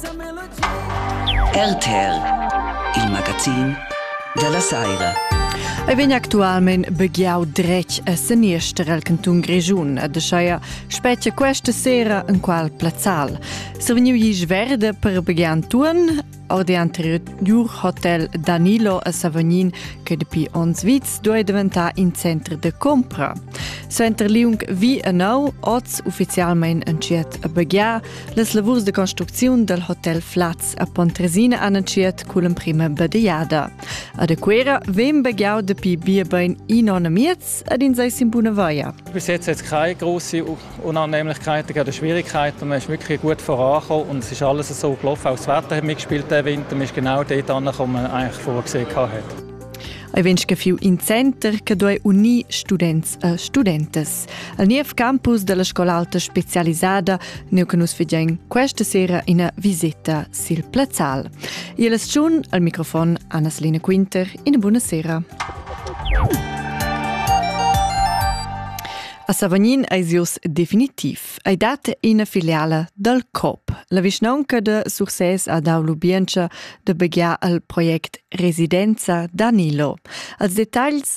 RTL, il magazin dalla saira. Ei vegn actualmein begiau dretg a seniester el cantun Grischun e de scheia spetga questa sera in qual plazzal. Se vegniu gis verde per begiar Anturn, or de anterior hotel Danilo a Savognin che dapi ons vits doi diventare in centro de compra. Center Liung vi e nau oz ufficialmein en ciet a begiar, Las lavurs de construcziun dal hotel Flaz a Pontresina han entschiet cun l'emprima badegliada. Ad Aquera vegn begliau dapi bia bein in onn miez ed in sei sin buna vaia. Bis jetzt hat es keine große Unannehmlichkeiten, keine Schwierigkeiten. Man ist wirklich gut vorangekommen und es ist alles so gelaufen. Auch das Wetter hat mitgespielt diesen Winter. Man ist genau dort angekommen, man eigentlich vorgesehen hat. Hai vens che fiu in center che duei unir students e studentas. Al niev campus della scola alta specialisada neu che nus vegien questa sera ina visita sil plazzal. Il schun al microfon Anna-Selina Quinter, ina buona sera. A Savognin ei sius definitiv. Ei dat ina filiala dal COP. La vischnaunca de Sursès ha dau lubientscha de begiar al project Residenza Danilo. Als detagls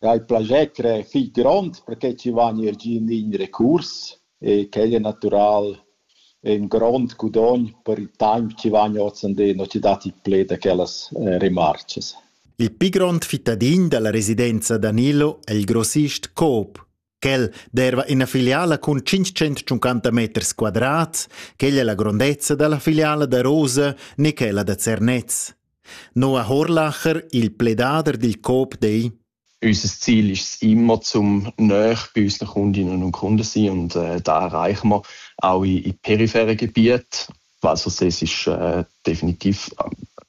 Ha il plascher crer fich grond perche chi vain eir giü in lign recurs e quel es natüral ün grond gudogn per il taimp chi vain ozandeno chi dat il pled a quellas remarchas. Il pi grond fittadin da la residenza da Nillo è il grossist Coop. Quel derva ina filiala cun tschintg-centtschuncanta meters quadrats, quella è la grondezza da la filiala da Rosa ni quella da Zernez. Noa Horlacher, il pledader dil COP dei. Unser Ziel ist immer, zum näher bei unseren Kundinnen und Kunden sein und äh, da erreichen wir auch in, in peripheren Gebieten. Also es ist äh, definitiv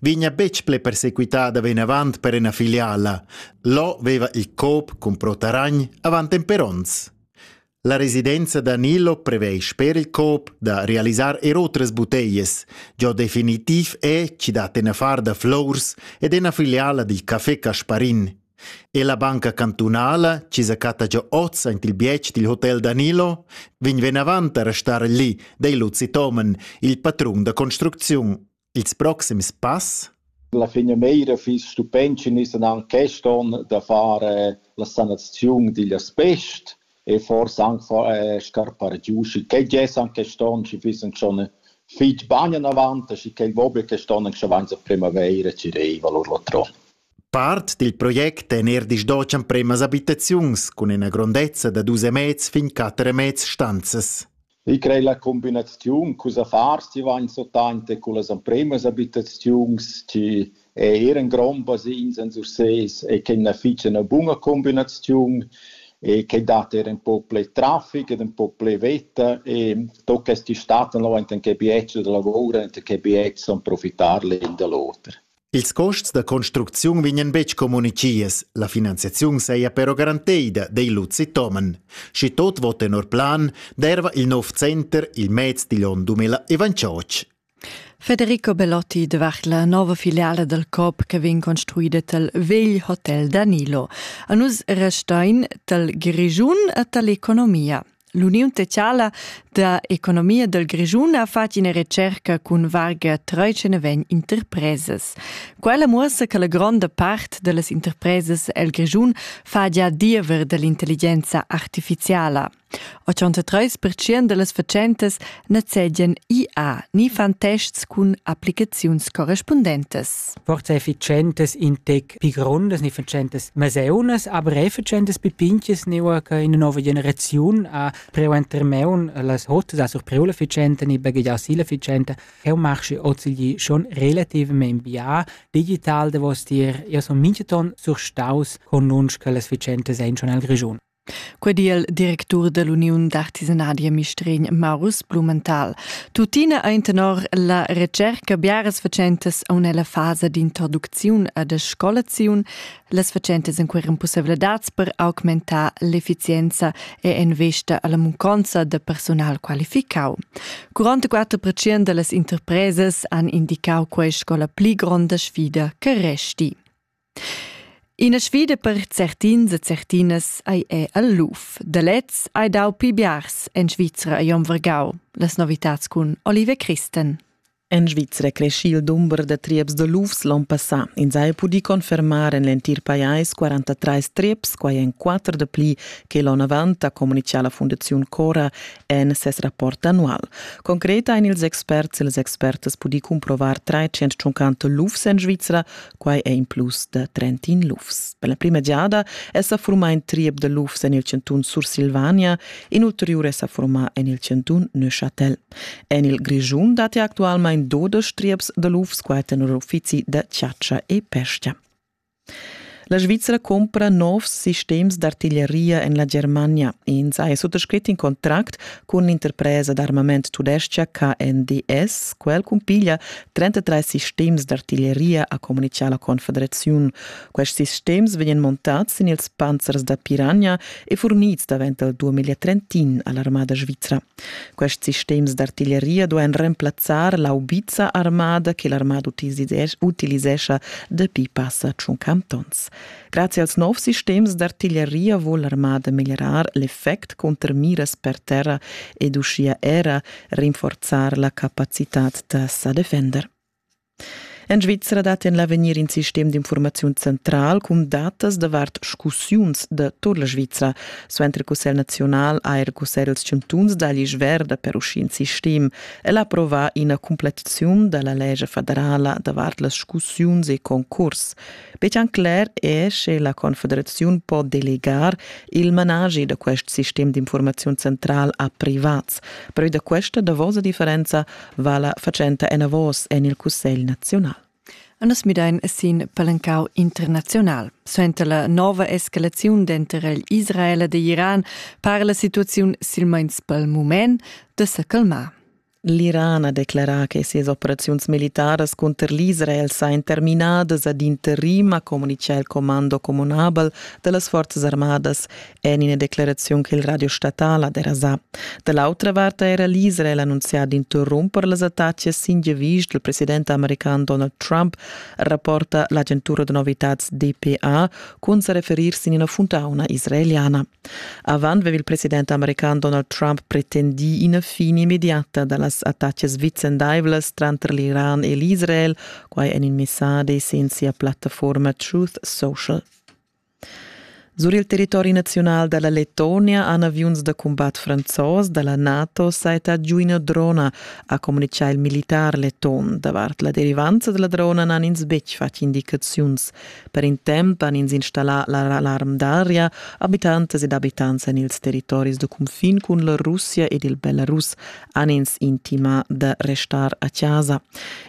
vegna betg pli persequitada vinavant per ina filiala. Lo veva il COP cun Pro Taragn avant en per onns. La residenza da Nilo prevei sper il COP da realisar er otras buteias. Giò definitiv è chi dat ina far da flors ed ina filiala di Café Casparin. E la banca cantunala, ci zacatta giò oz ant il bietg dil hotel Danilo, vegn venavant a restar lì, dei Luzi Tomen, il patrun da construcziun. Ils proxims pass? La finamira fiss stupent sche nus dan quest onn da far eh, la sanaziun digl asbest e forsa anc far eh, scarpar giu, schi quei gess anche quest'onn, schi fissen schon fitg bagn anavant, schi quei vo be quest'onn anche avanz a primavera, ci reiva lur latron. Part dil project en er disdochan premas abitaziuns cun ina grondezza da dus e mez fin quatter e mez stanzas. Eu crei la cumbinaziun culs affars chi vain sottante cullas empremas abitaziuns chi eran grondas insens ussés e che na fich üna buna cumbinaziun e che dat eir ün poc plü trafic ed ün poc plü vetta e do quest'istat no enten che bietsch da lavur enten che bietsch son profitar l'ün da l'oter. Ils custs da construcziun vegnan betg communitgias, la finanziaziun saja però garanteida, dei Luzi Tomen. Schi tot vot tenor plan, derva il nov center il mez digl onn 2028. Federico Bellotti devart la nova filiala dal COP che vegn construida tal vegl hotel Danilo. A nus restein tal Grigiun e tal economia. L'Uniun teziala da economia del Grischun ha fatg ina recerca cun varga 39 interpresas. Quella muossa che la gronda part delle interpresas el Grischun fa già diever dell'intelligenza artificiala. 83% delles facentes nezzegien IA, ni fan tests cun applicaziuns correspondentes. Forse efficientes in tec pi grondas ne facentas maseunas, aber e facentas pipinches neua che in nova generaziun ha preu enter meun las hotas a sur preu la ficenta ni baghegiau si la ficenta, che marschi ozilgi schon relativament bia digital da vos tier, io son minchaton surstaus con nunsch che las ficentas ein schon al Grischun. Quei di il directur dall'uniun d'artisanadi a Mistregn, Marus Blumenthal. Tuttina ein tenor la retscherca biaras fatschentas aun ella fasa d'introducziun e de scolaziun. Las fatschentas encueran pussevladads per augmentar l'efficienza e investa alla munconza de personal qualificau. 44% dallas interpresas han indicau quei sco la pli gronda sfida che resti. Ina sfida per certins e certinas ei è el luf. Da lez hai dau pli biars en Svizra e Vargau. Las novitads cun Olive Christen. En Svizra cresci il dumber da trieps de lufs l'on passà. Ins ha pudì confermar en l'entir pajais 43 trieps, quai en quatter de pli che l'on avant, ha communichà la Fundaziun Cora en ses rapport annual. Concret ein ils experts e les expertas pudì cumprovar 350 lufs en Svizra, Quai è in plus da trentin lufs. Per la prima giada è sa formà in triep da lufs en il chantun Sursilvania, in ulteriur è sa formà en il chantun Neuchâtel. En il Grischun datti actualmain dudesch trieps da lufs, qua tenor uffizi da chatscha e pesca. La Svizra compra novs sistems d'artiglieria en la Germania. Ins ha suttascrit in contract cun l'interpresa d'armament tudestga KNDS. Quel cumpiglia 33 sistems d'artiglieria ha communichà la Confederaziun. Questi sistems vegnan montads sin ils panzers da piragna e fornids davent dal 2031 a l'armada svizra. Questi sistems d'artiglieria duain remplazzar l'aubiza armada che l'armada utilisescha dapi passa tschun cantons. Grazie als novs sistems d'artiglieria vuol l'armada meglierar l'effect conter miras per terra ed uschia era rinforzar la capacitad da sa defender. En Svizra dat en l'avegnir in sistem d'informaziun central cun datas davart scussiuns da tur la Svizra, suenter il Cussegl nazional ha er Cussegl els chantuns da l'isch verda per uscì in sistem. El ha approvà ina cumplettaziun da la legge federala davart las scussiuns e concurs. Bechan cler è che la Confederaziun po delegar il managi da quest sistem d'informaziun central a privats. Però da questa davosa differenza va la fatschenta enavos en il Cussegl naziunal. Anas Midain è sin palancau internazional. Suenter la nova escalaziun denter il Israel ed Iran para la situaziun silmeins pel mument da se calmar. L'Iran ha declerà che sias operaziuns militaras cunter l'Israel sajan terminadas ad interim, ha communitgà il comando communabel da las forzas armadas en ina declaraziun che il radio statal ha derasà. Da l'autra vart ha era l'Israel annunzià d'interrumper las attacas sin giavisch dal president american Donald Trump, rapporta l'agentura da novitads DPA, cun sa referir sin ina funtauna israeliana. Avant aveva il president american Donald Trump pretendì ina fin immediata da las attacas vicendaivlas tranter l'Iran e l'Israel, quai en in messadi sin sia plattaforma Truth Social. Sur il territori nazional da la Letonia han aviuns da cumbat franzos da la NATO saita giu ina drona, ha communitgà il militar leton. Davart la derivanza della drona n'han ins betg fatg indicaziuns. Per in temp han ins installà l'alarm d'aria abitantas ed abitants en ils territoris da cunfin cun la Russia ed il Belarus han ins intimà da restar a chasa.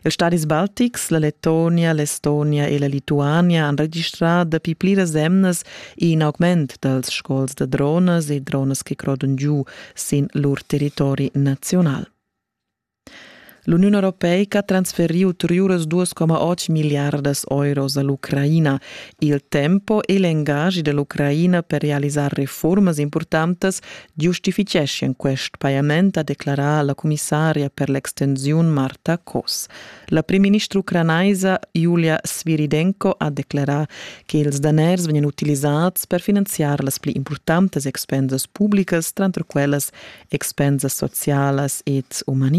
Ils stadis baltics, la Letonia, l'Estonia e la Lituania han registrà dapi pliras emnas in augment dals sgols da dronas e dronas che crodan giu sin lur territori nazional. L'Uniun europeica ha transferiu ulteriuras 2,8 miliardas euros all'Ucraina. Il tempo e l'engagi dell'Ucraina per realisar reformas importantas giustificheschian quest pajament, ha declarà la commissaria per l'extensiun Marta Kos. La primministra ucranaisa Julia Sviridenko ha declarà che ils daners vegnan utilisads per finanziar las pli importantas expensas publicas, tranter quellas expensas socialas ed umanitas.